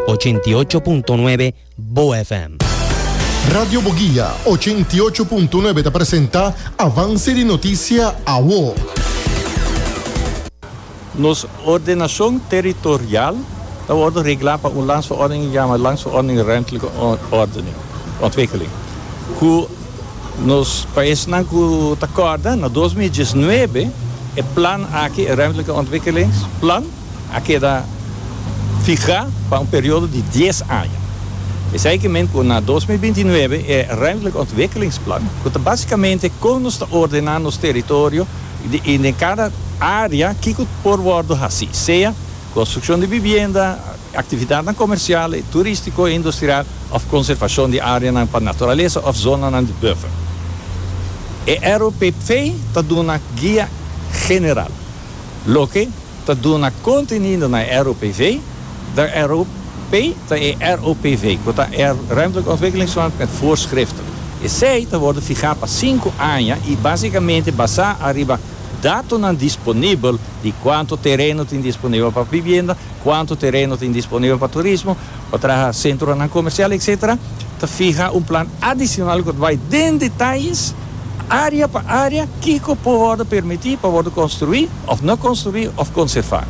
Ochenta i ocho punto nuebe Bo FM. Radio Boguia ochenta i ocho punto nuebe ta presenta Avance di Noticia Awo. Nos ordenacion territorial ta wordo regla pa un landsverordening e yama Landsverordening Ruimtelijke Ordening, Ontwikkeling, cu nos, pa esnan cu ta corda, na dos mil diesnuebe e plan aki, e Ruimtelijke Ontwikkelingsplan, a keda fihá pa un periodo di dies aña. Esei ke men ku na dos mil binti nuebe e Ruimtelijke Ontwikkelingsplan, ku ta básikamente kon nos ta ordená nos teritorio i den kada área kiko por wòrdu hasí, sea konstrukshon di bibienda, aktividatnan komersial i turístiko i industrial òf konservashon di áreanan pa naturalesa òf zonanan di buffer. E ROPP ta duna guia general. loke ta duna kontenido na e ROPV, de ROP ta e ROPV, ku ta e Ruimtelijke Ontwikkelingsplan met Voorschriften. Esei ta wòrdu fihá pa sinku aña i básikamente basá ariba datonan disponibel di kuantu tereno tin disponibel pa bibienda, kuantu tereno tin disponibel pa turismo, pa traha sentronan komersial etsetera, ta fiha un plan adisional ku ta bai den detayes, área pa área, kiko por wòrdu permití pa wòrdu konstruí òf no konstruí òf konservá.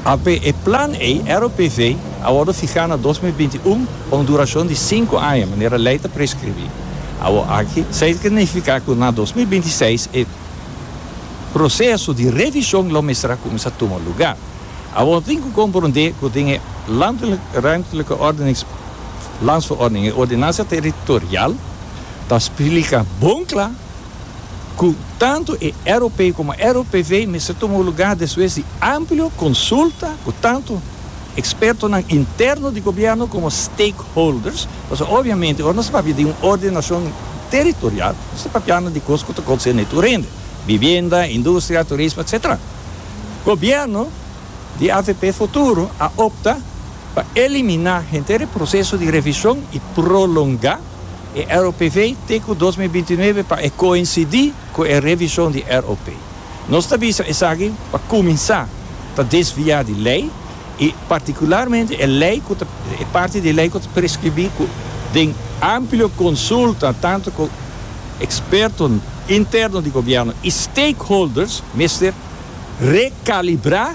Apé e plan ei, ROPV, a wòrdu fihá na dos mil binti un pa un durashon di sinku aña, manera lei ta preskribí. Awor aki, sa ta nifiká ku na dos mil binti seis e proseso di revishon lo mester a kuminsá tuma lugá. Awor tin ku komprondé ku tin e Landelijk Ruimtelijke Ordenings Landsverordening, e Ordenansia Territorial, ta splika bon kla ku tantu e ROP komo e ROPV mester tuma lugar despues di amplio konsulta ku tantu ekspertonan interno di gobièrnu komo stakeholders, pasobra obiamente ora nos ta papia di un ordenashon territorial nos ta papiando di kos ku ta konserne tur hende, bibienda, industria, turismo, etsetera. Gobierno di avp Futuro a opta pa eliminá henter e proseso di revishon i prolongá e ROPV te ku dos mil binti nuebe pa e koinsidí ku e revishon di ROP. Nos ta bisa esaki pa kuminsá ta desviá di lei. i partikularmente e lei ku ta e parti di e lei ku ta preskribí ku den amplio konsulta tantu ku ekspertonan interno di gobièrnu i stakeholders mester rekalibrá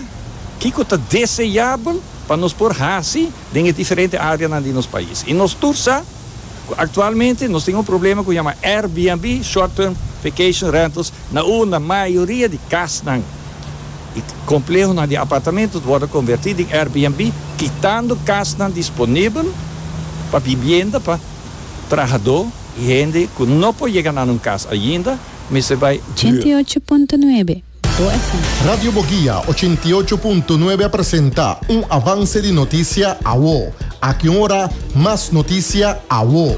kiko ta deseabel pa nos por hasi den e diferente áreanan di nos pais. I nos tur sa ku aktualmente nos tin un problema ku yama Airbnb, short term vacation rentals, Na unda mayoria di kasnan i komplehonan di apartamentu ta wòrdu konvertí den Airbnb, kitando kasnan disponibel pa bibienda pa trahadó i hende ku no por yega na nan kas ainda, mester bai huur. Ochenta i ocho punto nuebe Bo FM. Radio Boguia ochenta i ocho punto nuebe a presenta un avance di noticia awo. Aki un ora mas noticia awo.